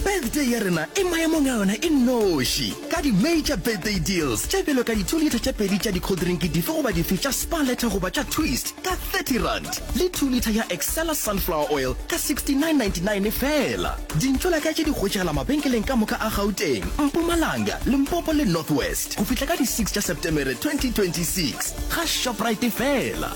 Birthday ya rena e maemong a yona e noši ka di-major birthday deals tše bjalo ka di-two litre tše pedi tša dikholdrinki dife goba dife tša Spar Letter goba tša Twist ka R30 le two litre ya Excella Sunflower Oil ka R69.99 feela. Dintšo la ka tše di hwetšagala mabenkeleng ka moka a Gauteng, Mpumalanga, Limpopo le North West go fihla ka di six tša Setemere 2026. Ga Shoprite feela.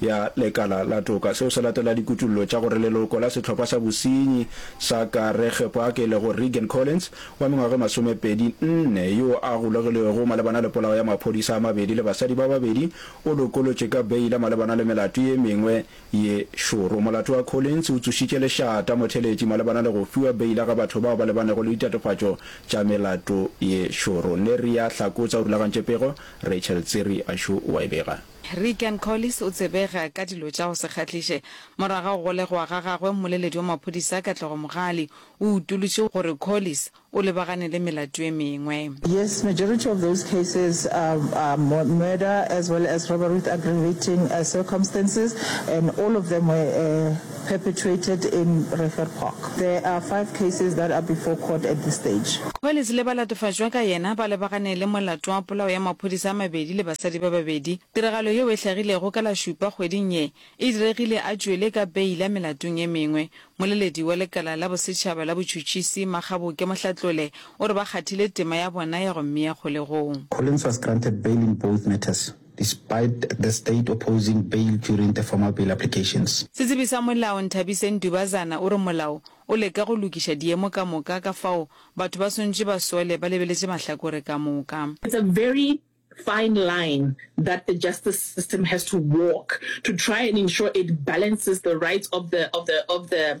ya lekala la toka. Seo se latela dikutollo tša gore leloko la sehlopha sa bosenyi sa Karegepoake le go Reagan Collins wa mengwaga e masomepedi nne yo a golegilwego malebana le polao ya maphodisa a mabedi le basadi ba babedi o lokolotšwe ka beila malebana le melato ye mengwe ye šoro. Molato wa Collins o tsošitše lešata motheletši malebana le go fiwa beila ga batho bao ba lebanego le ditatofatšo tša melato ye šoro. Neriah Hlakotsa o rulagantše pego, Rachel Tsiri a šo wa e bega. Reagan Collis o tsebega ka dilo tša go se kgahliše. Morwa ga go golegwa ga gagwe, mmoleledi wa maphodisa Katlego Mogali o utolotše gore Collis o lebagane le melato ye mengwe. Yes, majority of those cases are are murder as well as robbery with aggravating circumstances and all of them were perpetuated in Refer Park. There are five cases that are before court at this stage. Collins le ba latofatšwa ka yena ba lebagane le molato wa polao ya maphodisa a mabedi le basadi ba babedi. Tiragalo yeo e hlagilego ka la Šupa kgweding ye e diregile a tšwele ka beila melatong e mengwe. Moleledi wa lekala la bosetšhaba la botšhutšisi, Makgaboke Mohlatlole, o re ba kgathile tema ya bona ya go mmea kgolegong. Collins was granted bail in both matters. despite the state opposing bail during the formal bail applications. Setsebi sa molao Nthabiseng Dubazana o re molao o leka go lokiša diemo ka moka ka fao batho ba swantše ba sole ba lebeletše mahlakore ka moka. It's a very fine line that the justice system has to walk to try and ensure it balances the rights of the of the of the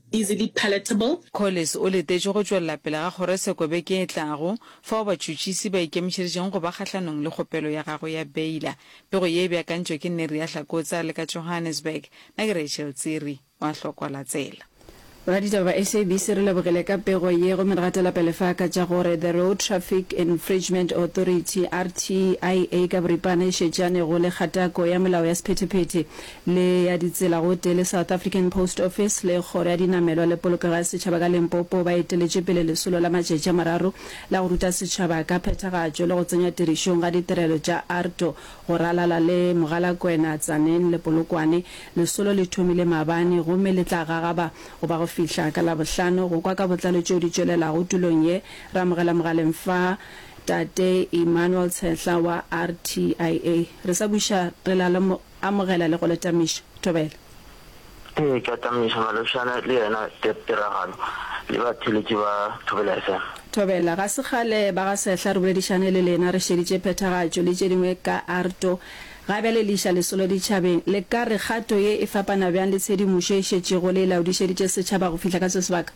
easily palatable. Collis o letetše go tšwelela pele ga kgorotsheko beke e tlago, fao batšhutšisi ba ikemišeditšego go ba kgahlanong le kgopelo ya gagwe ya beila. Pego ye e beakantšwe ke Neria Hlakotse a le ka Johannesburg, na ke Rachel Tsiri o a hlokola tsela. Boraditaba ba SABC re lebogile ka pego ye gomme re gatela pele fa ka tša gore The Road Traffic Infringement Authority, RTIA, ka boripana e šetšanego le kgatako ya melao ya sephetephete le ya ditsela gotee le South African Post Office le Kgoro ya Dinamelwa le Polokego ya Setšhaba ka Limpopo ba eteletše pele lesolo la matšatši a mararo la go ruta setšhaba ka phethagatšo le go tsenywa tirišong ga ditirelo tša ARTO go ralala le Mogalakwena, Tzaneen le Polokwane. Lesolo le thomile maabane gomme le tla gagaba go ba go fihla ka Labohlano. Go kwa ka botlalo tšeo di tšwelelago tulong ye, re amogela mogaleng fa Tate Emmanuel Tshehla wa RTIA. Re sa buša re la le Amogela le go le tamiša. Thobela. Ee, ke a tamiša Maloshana le yena Deb Tiragalo le batheeletši ba Thobela FM. Thobela. Ga se kgale ba ga Sehla re boledišane le lena re šeditše phethagatšo le tše dingwe ka Arto. Ga bjale le iša lesolo ditšhabeng. Le ka re kgato ye e fapana bjang le tshedimošo e šetšego le e laodišeditše setšhaba go fihla ka se sebaka?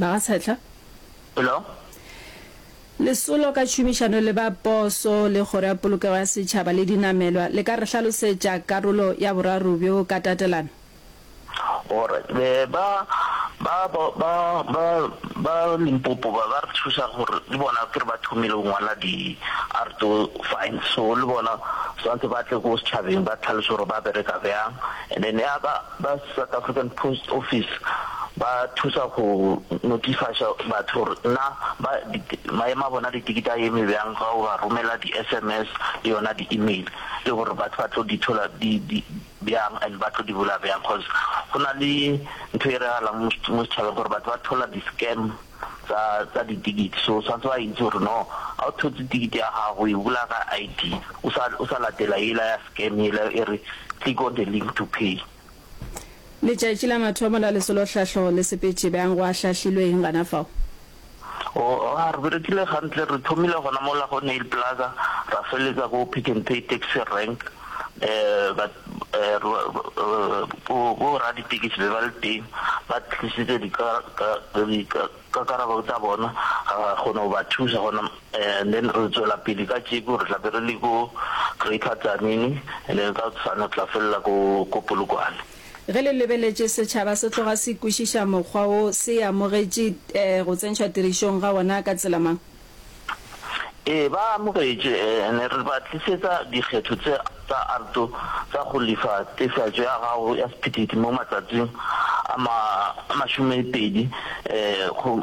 Magatshetla. Hello. Lesolo ka tšhomišano le ba poso le Kgoro ya Polokego ya Setšhaba le Dinamelwa le ka re hlalosetša karolo ya boraro bjo ka tatelano? Alright. Be ba, ba, ba, ba, ba, ba Limpopo ba, ba re thuša gore le bona ke re ba thomile go ngwala di arto fine. So le bona swantse ba tle ko setšhabeng ba tlhaloše gore ba bereka bjang. And then ya ka ba South African Post Office ba thusa go notifiša batho gore na ba maemo a bona ditikete a eme bjang ga o ba romela di SMS le yona di email le gore batho ba tlo di thola di di bjang and ba tlo di bula bjang cause go na le ntho e regala mo setšhabeng gore batho ba thola di scam tsa tsa ditikiti so swantse ba itse gore no ga o thotse tikiti ya gago e bula ka ID o sa o sa latela yela ya scam yela e re click on the link to pay. Letšatši la mathomo la lesolo hlahlo le sepetše bjang go a hlahlilwe eng gana fao? Oh a re berekile gantle re thomile gona mola go Nail Plaza ra feletsa ko Pick n Pay taxi rank um ba Bo raditekesi be ba le teng ba tlisitse dikakarabo tsa bona kgona go ba thusa gona and then re tswela pele ka tšeko re tla be re le ko Greater Tzaneen and then ka tsane re tla felela ko ko Polokwane. Ge le lebeletše setšhaba se tloga se kwešiša mokgwa wo se amogetše go tsentšhwa tirišong ga wona ka tsela mang? Ee, ba amogetše. Ne re ba tlisetsa dikgetho tše tsa arto tša go lefa tefiatšo ya gago ya sephethephethe mo matsatsing a ma, a masomepedi,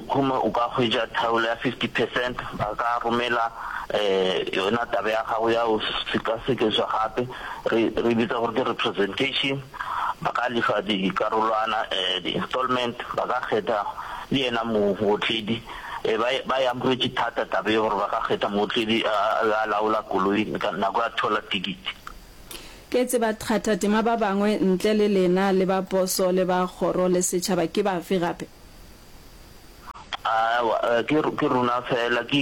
gomme o ka hwetša thaolo ya fifty percent. Ba ka romela yona taba ya gago ya go sekasekeswa gape, re, re e bitsa gore ke representation. Ba ka lefa dikarolwana, di-installment, ba ka kgetha le yena mootledi. Ee, ba, ba e amogetše thata taba ye gore ba ka kgetha mootledi a, a be a laola koloi ka nako ya thola tikiti. Ke tseba thata tema ba bangwe ntle le lena le ba poso le ba kgoro le setšhaba ke bafe gape? Aowa, ke, ke rona feela, ke,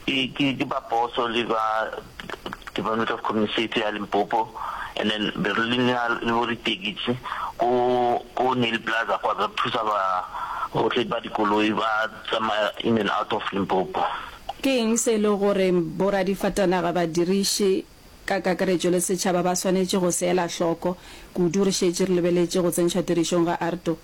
ke, ke, ke ba poso le ba. Department of Community Safety ya Limpopo and then be re le na le bo ditekisi ko ko Neil Plaza kwa re thusa ba gotlhe ba dikoloi ba tsamaya in and out of Limpopo. Ke eng se e le gore boradifatanaga, badiriši ka kakaretšo le setšhaba ba swanetše go se ela hloko kudu re šetše re lebeletše go tsentšhwa tirišong ga ARTO?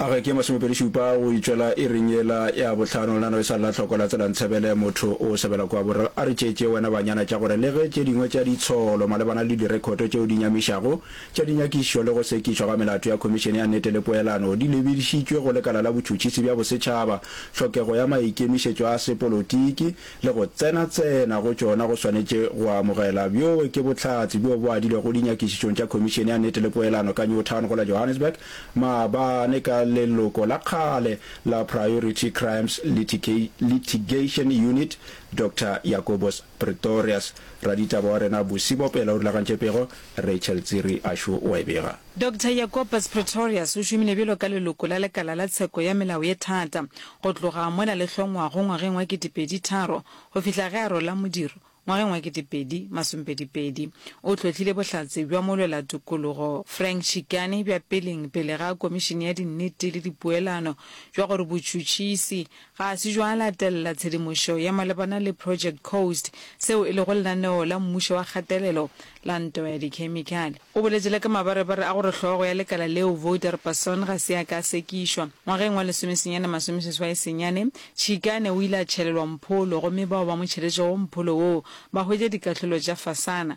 A ge ke ye masomepedišupa go itšwela iring yela ya bohlano, lena le sa lla hloko la tsela Ntsebele, motho o sebela kua bo re, a re tšeetše wena banyana tša gore le ge tše dingwe tša ditsholo malebana le direkhoto tšeo di nyamišago tša dinyakišišo le go sekišwa ga melato ya Khomišene ya Nnete le Poelano di lebedišitšwe go Lekala la Botšhutšhisi bja Bosetšhaba, tlhokego ya maikemišetšo a sepolotiki le go tsenatsena go tšona go swanetše go amogela. Bjo ke bohlatse bjo bo adilwego dinyakišišong tša Khomišene ya Nnete le Poelano ka Newtown go la Johannesburg maabane ka leloko la kgale la Priority Crimes Litigation Unit, Doctor Jacobus Pretorius. Raditaba wa rena Bosibo pele o rulagantše pego, Rachel Tsiri Ashu o a e bega. Doctor Jacobus Pretorius o šomile bjalo ka leloko la Lekala la Tsheko ya Melao ye Thata go tloga mola le hlongwago ngwageng wa ketepedi tharo go fihla ge a rola modiro ngwageng wa ketepedi masompedi pedi. O hlotlile bohlatse bja molwelatokologo Frank Chikane bja peleng pele ga Komišene ya Dinnete le Dipoelano bja gore botšhutšhisi Ga se jwa latelela tshedimošo ye malebana le Project Coast, seo e lego lenaneo la mmušo wa kgatelelo la ntwa ya dikhemikhale. O boletše le ka mabarebare a gore hlogo ya lekala leo Voudhar-Basson ga se a ka a sekišwa. Ngwageng wa lesomesenyane masome seswai senyane, Chikane o ile a tšhelelwa mpholo gomme bao ba mo tšheletšego mpholo woo ba hwetša dikahlolo tša fasana.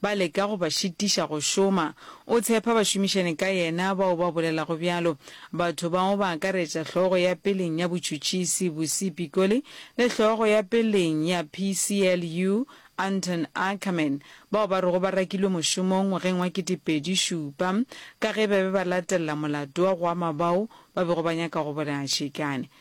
Ba leka go ba šitiša go šoma. O tshepa bašomišani ka yena bao ba bolelago bjalo. Batho bao ba akaretša hlogo ya peleng ya botšhutšisi Busi Pikoli le hlogo ya peleng ya PCLU Anton Ackerman, bao ba rego ba rakilwe mošomong ngwageng wa ketepedi šupa ka ge ba be ba latelela molato wa go ama bao ba bego ba nyaka go bolaya Shekane.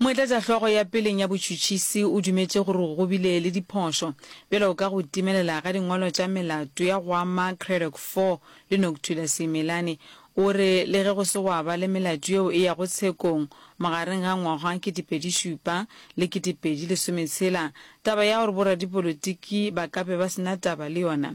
Moetlatšahlogo ya peleng ya botšhutšhisi o dumetše gore go bile le diphošo, bjalo ka go timelela ga dingwalo tša melato ya go ama Cradock Four le Noctulla Simelane. O re le ge go se gwa ba le melato yeo e yago tshekong magareng ga ngwaga ketepedi šupa le ketepedi lesometshela, taba ya gore boradipolotiki ba ka be ba se na taba le yona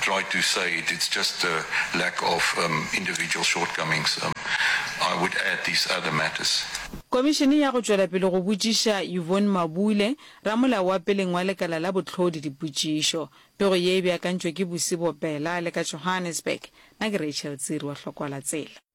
try to say it it's just a lack of individual shortcomings I would add these other matters. Komišene ya go tšwela pele go botšiša Yvonne Mabule, ramolao wa peleng wa lekala la bohlodi dipotšišo. Pego ye e beakantšwe ke Busibo Bela le ka Johannesburg. Na ke Rachel Tsiri wa Hlokwala Tsela.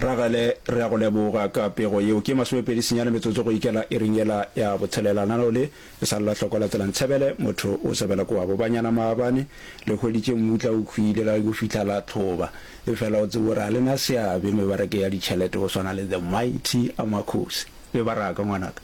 Ragale, re a go leboga ka pego yeo. Ke masomepedi senyane metsotso go ikela iring yela ya botshelela. Nano le, e sa lla hloko la tsela Ntshebele, motho o sebela kua Bobanyana maabane. Le hweditše mmutla o khwile ka go fihla la tlhoba. Efela o tsebe gore ga le na seabe mebarake ya ditšhelete go swana le The Mighty Amakhosi. Mebaraka, ngwanaka.